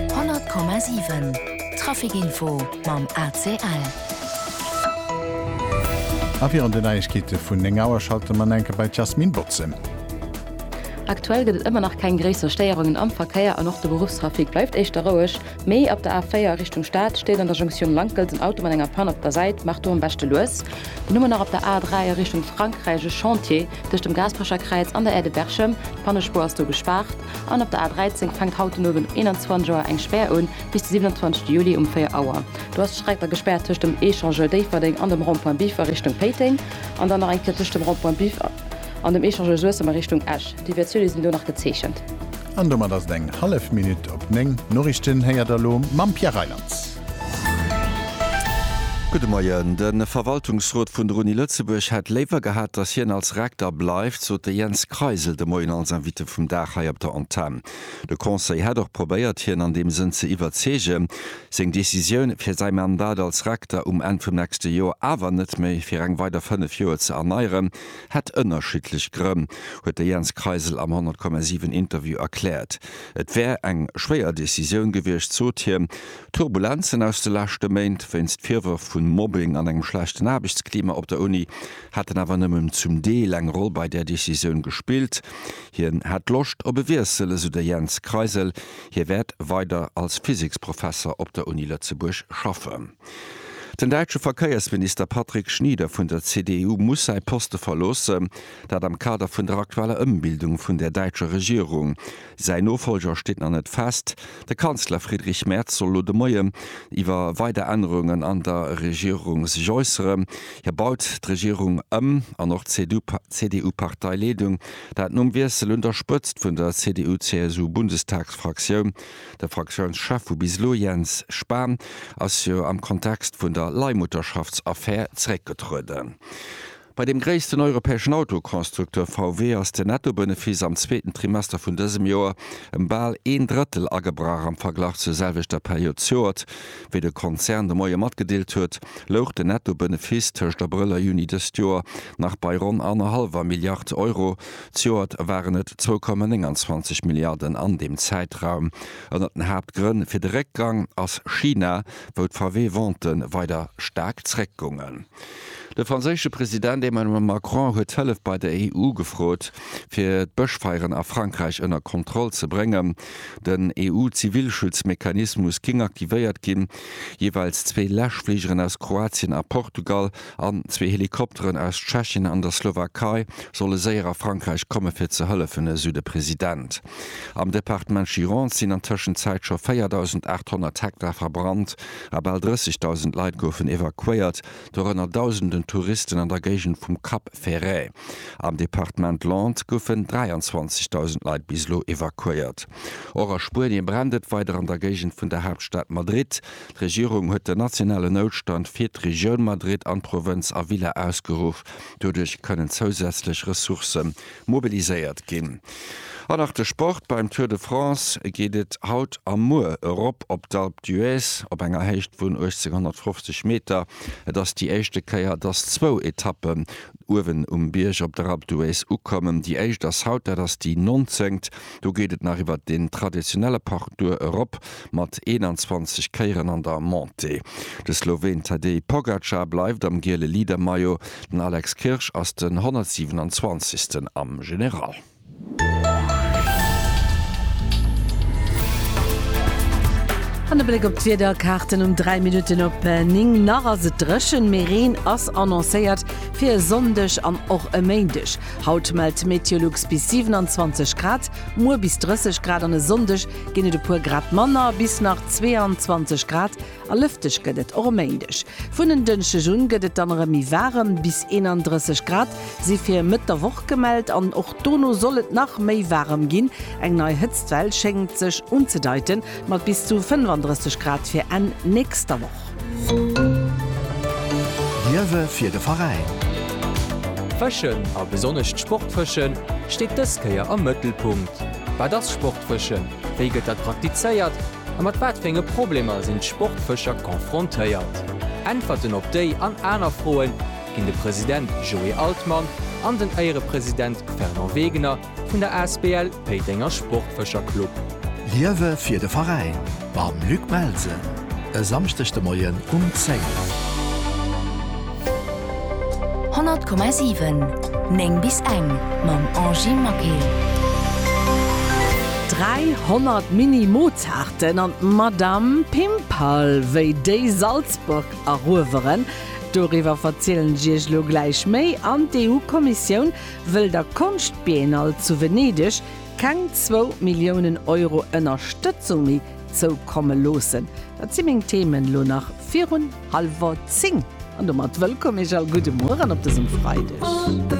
100,7 Trafic-Info mam ACL. A virun den Neiegkeete vun 9 Auer schalte mer enke bei d'Jasmine Boczen. Aktuell gëtt et ëmmer nach keng gréisser Stéierungen am Verkéier an och de Beruffstrafic bleift éischter roueg. Mee op der A4 a Richtung Stad steet an der Jonktioun Lankelt en Auto mat enger Pann op der Säit, maach do am beschte lues. Dann hu mer nach op der A3 a Richtung Frankräich e Chantier tëscht dem Gaasperecherkräiz an der Aire de Berchem, d'Pannespuer ass do gespaart. An op der A 13 fänkt haut den Owend um 21 Auer eng Spär un, bis de 27 Juli um 4 Auer. Do ass d'Streck da gespaart tëscht dem Echangeur Déifferdeng an dem Rond-point Biff a Richtung Péiteng, an dann nach eng Kéier tëscht dem Rond-point Biff an dem Echangeur Suessem a Richtung Esch. Deviatioune sinn do nach gezeechent. An domat ass et eng hallef Minutt op 9. D'Noriichten héiert der elo mam Pierre Reylands. Gudde Moien. De Verwaltungsrot vun der Uni Lëtzebuerg hätt léiwer gehat, datt hien als Rekter bleift, sot de Jens Kreisel de Moien als Invité vum Dag hei op der Antenn. De Conseil hätt och probéiert, hien an deem Sënn ze iwwerzeegen, seng Decisioun, fir säi Mandat als Rekter um Enn vum nächste Joer awer net méi fir eng weider 5 Joer ze erneieren, hätt ënnerschiddlech Grënn, huet de Jens Kreisel am 100,7 Interview erkläert. Et wär eng schwéier Decisioun gewiescht, sot hien. D'Turbulenzen aus de leschte Méint wéinst Virwërf vun Mobbing an engem schlechten Aarbechtsklima op der Uni hätten awer nëmmen zum Deel eng Roll bei där Decisioun gespillt. Hien hätt Loscht op e Wiessel, esou de Jens Kreisel. Hie wäert weider als Physiksprofesser op der Uni Lëtzebuerg schaffen. Den däitsche Verkéiersminister Patrick Schnieder vun der CDU muss säi Poste verloossen, dat am Kader vun der aktueller Ëmbildung vun der däitscher Regierung. Säin Nofolger steet nach net fest. De Kanzler Friedrich Merz soll elo de Moien iwwer weider Ännerungen an der Regierung sech äusseren. Hie baut d'Regierung ëm an och d'CDU-Parteileedung, dat nom Wiessel un der Spëtzt vun der CDU-CSU-Bundestagsfraktioun. De Fraktiounschef vu bis elo, Jens Spahn, ass jo am Kontext vun der Leihmutterschaftsaffär zeréckgetrueden. Bei dem gréissten europäeschen Autoconstructeur VW ass den Nettobenefiss am zweeten Trimester vun dësem Joer ëm bal een Drëttel agebrach. Am Verglach zur selwechter Period z'Joert, wéi de Konzern de Moie matgedeelt huet, louch den Nettobenefiss tëscht Abrëll a Juni dëst Joer nach bei ronn annerhallwer Milliard Euro, Zejoert waren et 2,29 Milliarden an deem Zäitraum. Ënner den Haaptgrënn fir de Réckgang ass China, wou d'VW-Ventë weider staark zréckgungen. De franséische President Emmanuel Macron huet Hëllef bei der EU gefrot, fir d'Bëschfeieren a Frankräich ënner Kontroll ze bréngen. Den EU-Zivilschutzmechanismus géing aktivéiert ginn. Jeeweils zwee Läschfligeren aus Kroatien a Portugal An zwee Helikopteren aus Tschechien an der Slowakei solle séier a Frankräich komme fir ze hëllefen, esou de President. Am Departement Gironde sinn an Tëschenzäit scho 4.800 Hektar verbrannt a bal 30.000 Leit goufen evakuéiert, dorënner Dausenden Touristen an der Géigend vum Cap Ferret. Am Departement Landes goufen 23.000 Leit bis elo evakuéiert. Och a Spuenie brennt et weider an der Géigend vun der Haaptstad Madrid. D'Regierung huet den nationalen Noutstand fir d'Regioun Madrid an d'Provënz Avila ausgeruff. Doduerch kënnen zousätzlech Ressourcë mobiliséiert ginn. An nach de Sport, Beim Tour de France geet et haut a muer erop op d'Alpe d'Huez op enger Héicht vun 1850 Meter. Et ass déi éischte Kéier, dass zwou Etappen uewen um Bierg op der Alpe d'Huez ukommen. Déi éischt ass haut, dat ass déi 19. Do geet et nach iwwert den traditionelle Parcours erop mat 21 Kéieren an der Montée. De Sloween Tadej Pogacar bleift am giele Leader-Maillot, den Alex Kirsch ass den 127. am General. An e Bléck op d'Wiederkaarten um 3 Minutten op 9. Nach ass et dréchen, mee Reen ass annoncéiert fir e Sonndeg an och e Méindeg. Haut mellt d'Meteolux bis 27 Grad, muer bis 30 Grad an e Sonndeg ginn et e puer Grad manner, bis nach 22 Grad, a lëfteg gëtt et och e Méindeg. Vun en Dënschdeg un gëtt et dann erëm méi waarem, bis 31 Grad si fir Mëtt der Woch gemellt an och dono soll et nach méi waarem ginn. Eng nei Hëtztwell schéngt sech unzedeiten, mat bis zu 35 Grad fir Enn nächster Woch. D'Liewe fir de Veräin. Fëschen, a besonnesch d'Sportfëschen, steet dës Kéier am Mëttelpunkt. Wat ass Sportfëschen, wéi gëtt dat praktizéiert a mat wat fir enge Problemer sinn d'Sportfëscher confrontéiert? Äntwerten op déi an aner Froe ginn de President Joé Altmann an den Éierepresident Fernand Wegener Vun der Asbl Péitenger Sportfëscher Club. Liewe fir de Veräin mam Luc Melsen e Samschdeg de Moien um 10. 100,7 9 bis eng mam Angy Maquil. 300 Mini Mozarten an d'Madame Pimpal wéi déi Salzburg erueweren, doriwwer verzielen ech Iech elo gläich méi an d'EU-Kommissioun Wëll der Konschtbiennale zu Venedeg keng zwou Milliounen Euro Ënnerstëtzung méi zoukomme loossen? Dat si meng Themen elo nach virun hallwer zéng. An domat wëllkomm Iech all, gudde Mueren op dësem Freideg.